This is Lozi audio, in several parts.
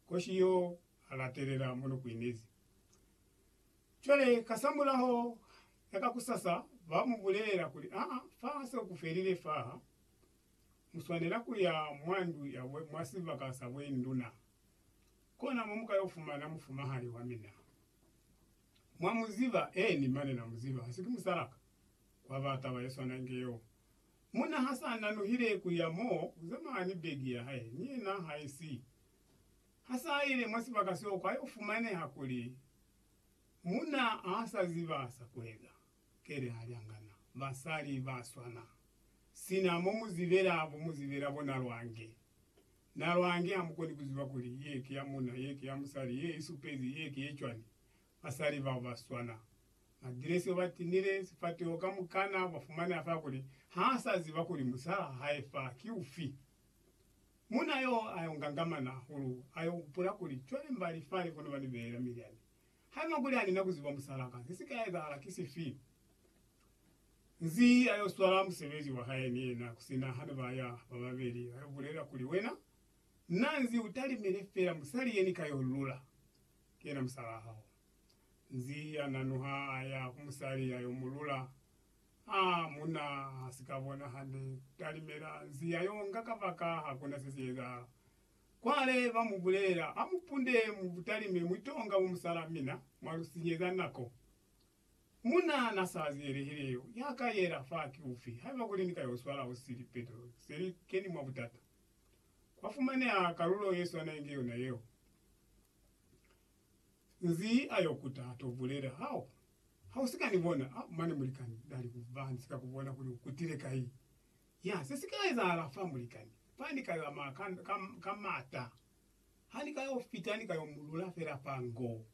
koshi yo a latelela mo no kuinezi. Cwale kasamulaho ya kakusasa ba mu bulelela kuli, Aa, fa se ku felile faha, mu swanela ku ya mwa ndu ya bwe, mwa sibaka sa bwe nduna. Kona mo mu ka yo fumana mufumahali wa mina. Mwa mu ziba? Eeni, mane na mu ziba. Ha si ki musala ka? Kwa ba taba ye swana inge yeo. Munna ha sa nanuhile ku ya mo ku zamana ni begi ya hae ni yena ha i si. Ha sa ile mwa sibaka seo kwa yo fumaneha kuli munna ha sa ziba sa ku eza. Kele ha li angana. Basali ba swana. Sina mo mu zibela, bo mu zibela bo na lwange. Na lwange ha mu koni ku ziba kuli ye ki ya munna, ye ki ya musali, ye i supezi, ye ki ye cwani. Basali bao ba swana. Magilesi o ba tinile sifateho kamukana ba fumane a fa kuli ha sa ziba kuli musalaa wa hae fa ki ufi. Muuna yo a yo ngangamana hahulu, a yo hupula kuli, Cwale mba li fani kono ba ni beela milyani. Haiba kuli ha ni na ku ziba musalaa ka, se si ka ezahala ki sifi? Nzi a yo swala musebezi wa hae ni yena ku sina ha ne ba ya ba babeli, a yo bulela kuli, Wena, na nzi u talimile fela musali ye ni ka yo lula. ki yena musalaa hao. Nzi ya nanuha a ya ku musali ya yo mu lula. A munna ha si ka bona hande, talimela nzi ya yo nga kabaka ha kuna se si ezahala. Cwale ba mu bulela, Ha mu punde mu butalime mwi tonga bo musalaa mina mwa lu sinyeza nako. Munna na sa ziyelehile yo ya ka yela fa ki ufi, haiba kuli ni ka yo swala hosi lipeto se li keni mwa butata. Kwa fumaneha kalulo ye swana inge yona yeo. Nzi ayo kuta ato bulela, Hao, hau sika ni bona, a, mane mulikani, nali ku ba ni sika ku bona kuli u kutile kai. Ya, se sika ezahala fa, mulikani, fa ni ka zamaya ka, ka, ka mata. Ha ni ka yo fita, ni ka yo mu lula fela fa ngo.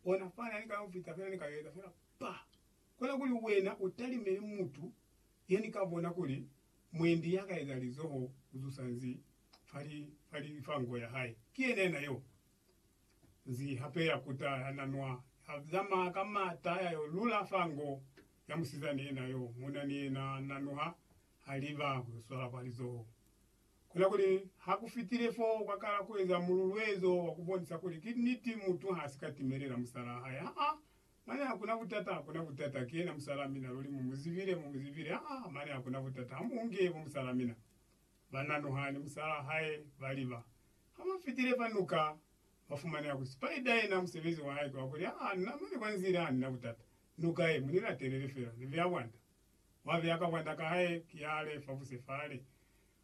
Ona fani, ha ni ka yo fita fela, ni ka yo eza fela pa. Kona kuli wena u talimele mutu ye ni ka bona kuli mwendi ya ka eza lizoho ku zusa nzi fa nko ya hae. Ki yena yena yo nzi hape ya kuta ya na nwa, ya zama ka mata ya yo lula fa nko ya musizani yena yo muna ni yena na nuha ha liba ku yo swala kwa lizoho. Ku na kuli ha ku fitile foo, kwa kala ku eza mululuezo wa ku bonisa kuli ki niti mutu ha si ka timelela musalaa hae. Aa, mane ha ku na butata, ha ku na butata. Ki yena musalaa mina, luli mu mu zibile, mu mu zibile. Aa, mane ha ku na butata, ha mu nge bo musalaa mina. Bananuha ni musalaa hae baliba. Habafitile fa nuka, bafumanela kuli Spider yena musebezi wahae ki wakuli, Aa, nna mwa ni kwanzile hanina butata. Nuka ye, munilatelele fela. Ni beya bwanda. Wabeya ka bwanda kahae ki yale fabuse fale.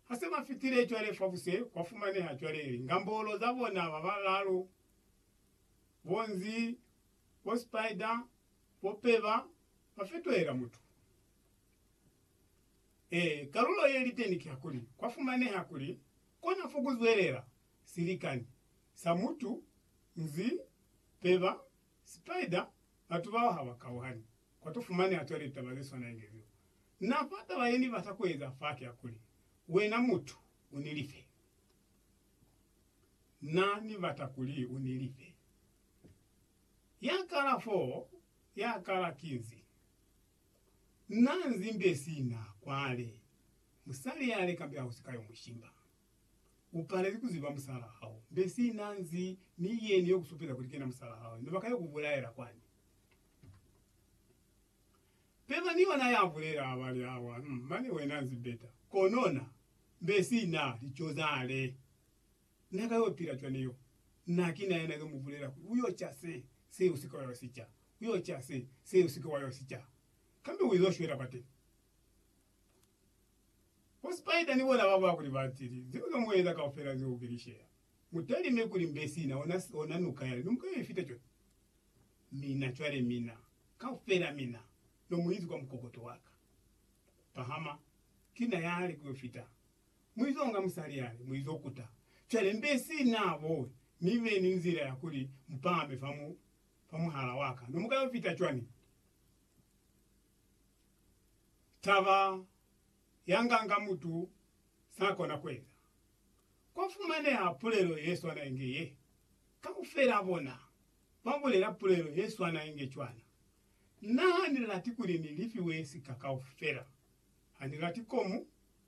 Hase bafitile cwale fabuse, kwafumaneha cwale lingambolo zabona babalaalu, bo Nzi, bo Spider, bo Peba, bafetohela mutu. Ee, kalulo ye li teni kihakuli kwa fumaneha kuli kona fo ku zwelela silikani sa mutu, nzi, peba, spider, batu bao ha ba kauhani. Kwa to fumaneha cwale litaba ze swana inge zeo. Na fa taba ye ni bata ku eza fa kiyakuli, Wena mutu, u ni life. Na ni bata kuli u ni life. Ya kala foo, ya kala ki nzi? Na nzimbe sina kwale, musali ya leka mbe hausi ka yo mushimba. U palezi ku ziba musala hao, mbe sina nzi mi yeni yo ku supeza kuli kena musala hao ino baka yo ku bulaela kwani? Peba ni yona ya bulela abali awa, mane wena nzimbeta kono na, mbe sina lico zale. Na ka yo pila cwani yo? Na ki na yena yo mu bulela kuli, U yo ca se, se, u si ke wa yo si ca. U yo ca se, se, u si ke wa yo si ca. Kambe u izo shwela kwateni. Bo Spider ni bona baba kuli ba tili, Ze u zo mu eza kaufela zeo ki lishela. Mu talime kuli mbe sina ona, ona nuka yale, no mu ka yo ifita cwani? Mina, cwale mina, kaufela mina, no mu izi kwa mukokoto wa ka. Pahama, ki na yale ku yo fita. Muizonga musali yale, muizokuta. Cwale mbe si na bowi, mi be ni nzila ya kuli mupahame fa mu, fa muhala waka. No muka yo fita cwani? Taba ya nganga mutu sa kona kueza. Kwa fumaneha pulelo ye swana inge ye. Kaufela bona ba bulela pulelo ye swana inge cwana. Na ha ni lati kuli ni lifiwe sika kaufela. Ha ni lati komu